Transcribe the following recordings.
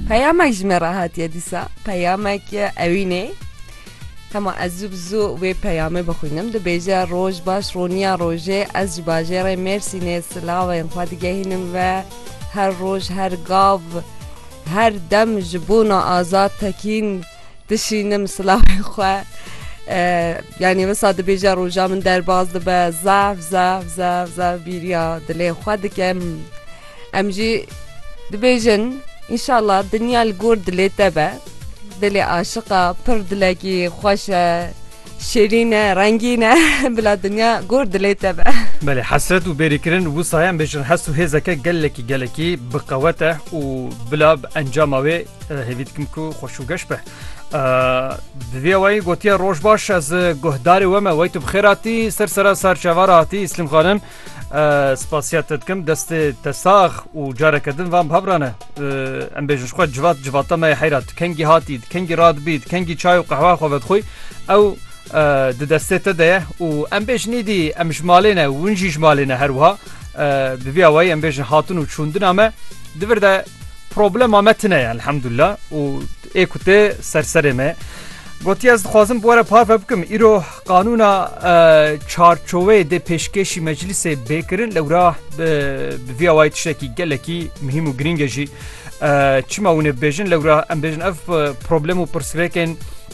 Peyamek ji me re hatiye dîsa peyamek ewînê hema ez zû bi zû wê peyamê bixwînim dibêje roj baş roniya rojê ez ji bajêrê mêrsînê silavên xwe digehînim ve her roj her gav her dem ji bona azad tekîn dişînim silavên xwe yanî wisa dibêje roja min derbas dibe zaf zaf zaf zaf bîriya dilê xwe dikim Em jî dibêjin înşallah dinya li gor dilê te be. Dilê aşiqa pir dilekî xweş e, şêrîn e, rengîn e. Bila dinya gor dilê te be. Belê hesret û bêrîkirin wisa ye em bêjin hest û hêzeke gelekî gelekî bi qewet e û bila bi encama wê hêvî dikim ku xweş û geş be. Bi vê wayî gotiye roj baş ez guhdarê we me wey tu bi xêr hatî ser sera sar çavara hatî Îslîm xanim. Spasiyet te dikim destê te sax û careke din vam hevrane em bêjin xwe civat civata me heyra tu kengî hatî kengî radbî kengî çay û qehwa xwe vedixwî ew di destê te de ye û em bêj nîdî em ji malê ne win jî ji malê ne her wiha bi vî awayî em bêjin hatin û çûndina me divir de problema me tine ye elhemdullah û ê ku tê serserê me gotiye ez dixwazim bi were parve bikim îro Qanûna çarçoveyê dê pêşkêşî meclisê bê kirin lewra bi vî awayî tiştekî gelekî muhîm û girîng e jî çima hûn ê bibêjin lewra em bêjin ev problem û pirsgirêkên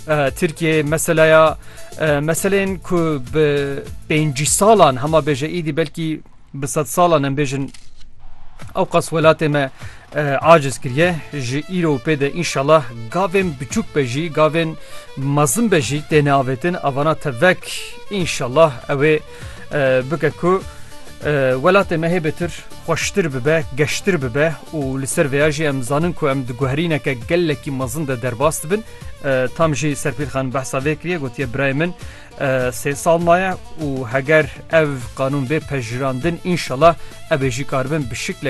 Tirkiyeyê meselaya meselên ku bi pêncî salan hema bêje îdî belkî Bi sedsalan em bêjin ewqas welatê me aciz kiriye ji îro pê de înşallah gavên biçûk be jî gavên mezin be jî têne avêtin avana tevek înşallah ewê bike ku welatê me hêbêtir xweştir bibe geştir bibe û li ser vêya jî em zanin ku em diguherîneke gelekî mezin de derbas dibin tam jî serpîlxan behsa vê kiriye gotiye birayê min Sê sal maye û heger ev qanûn bê pejirandin înşela ev ê jî karibin bi şiklekî